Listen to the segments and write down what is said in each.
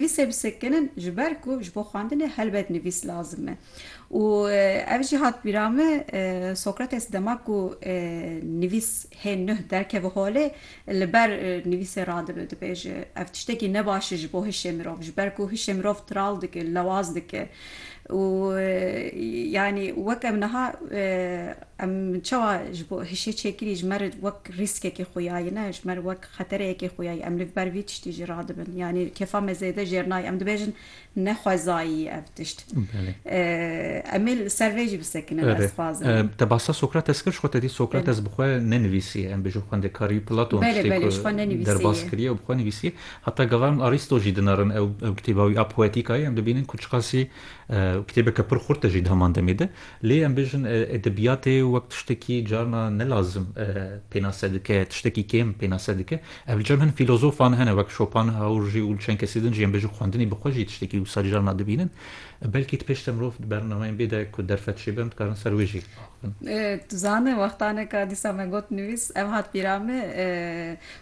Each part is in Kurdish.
Nivîsê bisekinin ji ber ku ji bo xwendinê helbet nivîs lazim e û ev jî hat bîra min Sokrates dema ku nivîs hê nuh derkeve holê li ber nivîsê radibe dibêje ev tiştekî ne baş e ji bo hişê mirov ji ber ku hişê mirov tiral dike lewaz dike û yanî wek em niha em çawa ji bo hişê çêkirî ji me re wek rîskekê xuyayine ji me re wek Xetere yekê xuya ye. Em li ber vî tiştî jî radibin. Yanî kêfa me zêde jêr nayê. Em dibêjin ne xwezayî ye ev tişt. Em ê li ser vê jî bisekinin ez dixwazim. Erê, te bahsa Sokrates kir, ji xwe te dît Sokrates bi xwe nenivîsiye. Em bêjin xwendekarî Platon tiştê ku derbas kiriye û bi xwe nivîsiye. Heta gava em Arîsto jî dinarin ew kitêba wî a Poetikayê em dibînin ku çiqasî kitêbeke pir xurt e jî di heman demê de. Lê em bêjin edebiyatê wek tiştekî carna ne lazim pênase dike, tiştekî kêm pênase dike. Ev li cem hin fîlozofan hene wek Schopenhauer jî û li çend kesî din jî em bêjin xwendinî bi xwe jî tiştekî wisa carna dibînin. Belkî di pêş de mirov di bernameyên bê de ku derfet çêbin dikarin ser wê jî axivin. Tu zane wextaneka dîsa me got nivîs ev hat bîra me.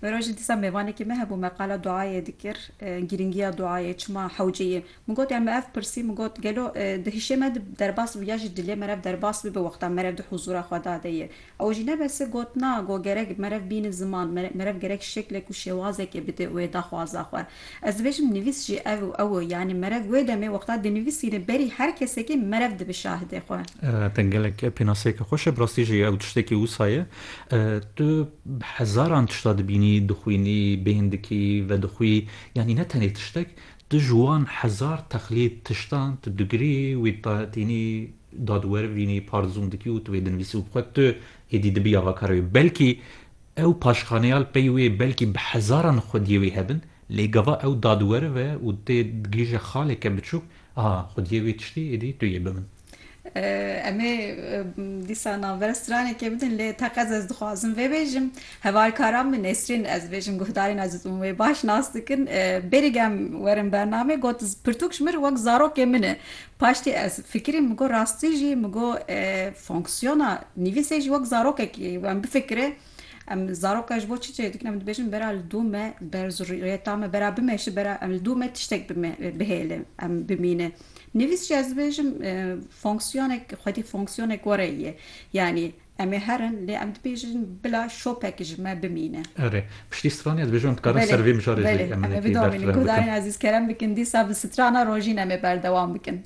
Wê rojê dîsa mêvanekî me hebû me qala duayê dikir. Girîngiya duayê çima hewceyê Min got em ev pirsî min got gelo di hişê me de derbas bibe ya jî dilê me re derbas bibe wexta merev di huzûra Xweda de ye. Ew jî ne bes e got na go gerek merev bînin ziman, merev gerek şeklek û şêwazekê bide wê daxwaza xwe. Ez dibêjim nivîs jî ev û ew e yanî merev wê demê wexta dinivîsîne berî her kesekê merev dibe şahidê xwe. Te gelek pênaseyeke xweş e, bi rastî jî ew tiştekî wisa ye. Tu bi hezaran tişta dibînî, dixwînî, bêhn dikî, vedixwî yanî ne tenê tiştek Tu ji wan hezar teqlîd tiştan tu digirî wî ta tînî dad wer vînî parzûn dikî û tu wê dinivîsî û bi xwe tu êdî dibî ava kara wê. Belkî ew paşxaneya li pey wê belkî bi hezaran xwediyê wê hebin lê gava ew dadweriv e û tê digihîje xaleke biçûk, aha xwediyê wê tiştî êdî tu yê bi min. Em ê dîsa navbera stranekê bidin lê teqez ez dixwazim vê bêjim. Hevalkaran min Nesrîn ez bêjim guhdarên eziz hûn wê baş nas dikin. Berî gem werin bernamê got pirtûk ji min re wek zarokê min e. Paştî ez fikirîm min got rastî jî min got fonksiyona nivîsê jî wek zarokekî wan bifikire. Em zarok e ji bo çi çê dikin? Em dibêjin bera li dû me ber zurriyeta me bera bimeşi bera em li dû me tiştek bime bihêle em bimîne. Nivîs jî ez dibêjim fonksiyonek xwedî fonksiyonek were ye. Yanî em ê herin lê em dibêjin bila şopek ji me bimîne. Erê. Piştî strana dibêjim em dikarin ser vê mijarê jî em hinekî berfirehn bikin. Guhdarên ezîz kerem bikin dîsa bi strana rojîn em ê berdewam bikin.